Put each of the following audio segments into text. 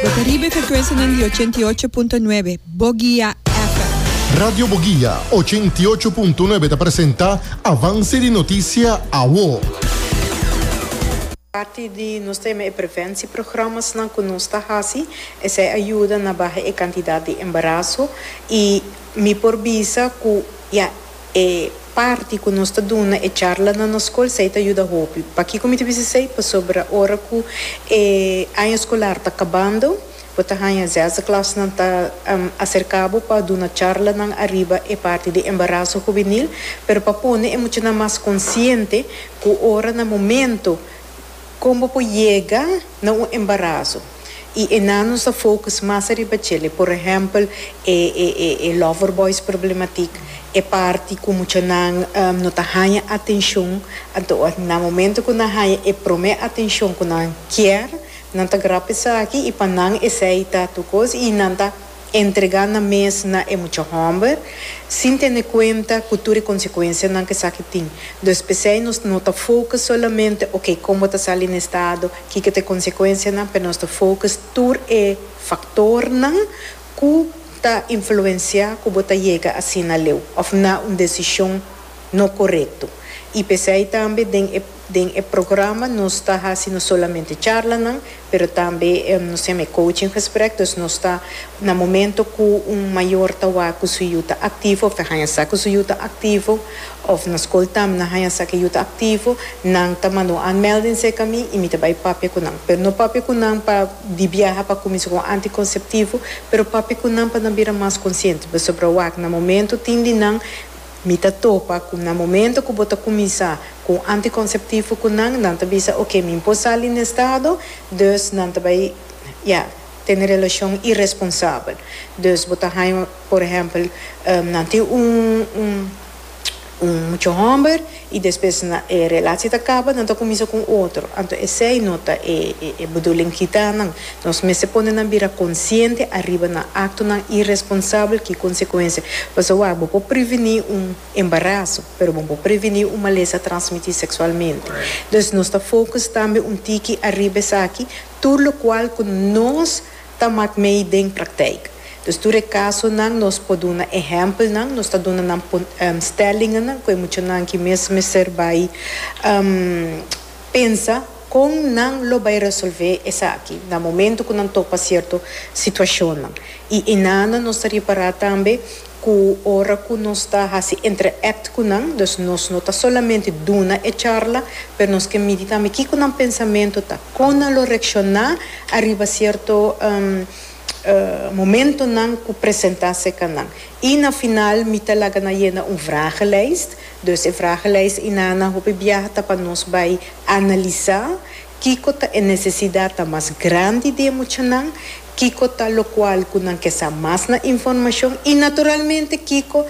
Bo ta riba e frekuensianan di ochenta i ocho punto nuebe Bogia FM. Radio Bogia ochenta i ocho punto nuebe ta presenta Avanse di Noticia Awo. Parti di nos tema e prevensieprogramasnan cu nos ta haci, esey a yuda na baha e cantidad di embarazo y mi por bisa cu ya. E parti ku nos ta duna e charla na nos skol sei ta yuda hopi. Pakiko mi ta bisa esei? Pasobra ora ku e aña skolar ta kabando, bo ta haña zesde klasnan ta aserká bo pa duna charlanan ariba e parti di embaraso hubenil, pero pa pone e muchanan mas konsiente ku ora na momento, Kon bo por yega na un embaraso y enanus ta focus mas ariba chele, por ehempel e e e lover boys problematic, e parti cu muchanan no ta haya atencion, anto na momento cu nan haya e prome atencion cu nan kier, nan ta grap esaki y pa nan esey ta tur cos y nan ta. entregá nan mes na e mucha hòmber, sin tene kuenta ku tur e konsekuensianan ku esaki tin. Dus p'esei nos no ta fokus solamente oke kon bo ta sali na e stado, kiko ta e konsekuensianan, pero nos ta fokus tur e faktornan ku ta influensiá ku bo ta yega asina leu òf na un desishon no korekto. I p'esei tambe den e. Den e programa nos ta hasi no solamente charlanan, pero tambe nos tem e coaching gesprek, dus nos ta na momento cu un mayor ta wak cu su yu ta activo of ta haña sa cu su yu ta activo of na school tambe nan haña sa cu e yu ta activo, nan ta manda un aanmelding cerca mi y mi ta bay papia cu nan, pero no papia cu nan pa di biaha pa cuminsa cu anticonceptivo, pero papia cu nan pa nan bira mas consciente, pasobra wak na momento tin di nan. Mi ta topa cu na momento cu bo ta cuminsa cu un anticonceptivo cu nan, nan ta bisa ok, mi por sali na e estado, dus nan ta bay ya tene relacion irresponsabel. Dus bo ta haya por ehempel nan tin un un un mucha homber y despues nan e relaci ta caba nan ta cuminsa cu un otro, anto esey no ta e e bedoeling kita nan. Nos mester pone nan bira konsiente ariba nan aktonan iresponsabel ki konsekuensia. Pasobra bo por prevení un embaraso, pero bo no por prevení un malesa transmití seksualmente. Dus nos ta fokus tambe un tiki ariba esaki, tur lokual ku nos ta mak mei den praktijk. Dus tur e kasonan nos por duna ehèmpelnan, nos ta duna nan stèlinganan ku e muchanan ki mes mester bai pensa. Kon nan lo bai resolvé esaki na momentu ku nan topa sierto situashonnan? I enana nos ta ripará tambe ku ora ku nos ta hasi interact ku nan, dus nos no ta solamente duna e charla, pero nos ke midi tambe kiko nan pensamentu ta, kon nan lo reakshoná ariba sierto momentunan ku presentá serka nan. I na final mi ta laga nan yena un vragelijst, Dus e vragelijs inan na hopi biaha ta pa nos bai analisá kiko ta e nesesidat ta mas grandi di e muchanan, kiko ta lokual ku nan ke sa mas na informashon i naturalmente kiko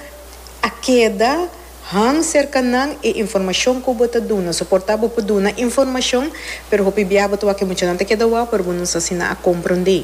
a keda han serka nan e informashon ku bo ta duna. So por ta bo por duna informashon pero hopi biaha bo ta wak ku e muchanan ta keda wou pero bo no sa si nan a komprondé.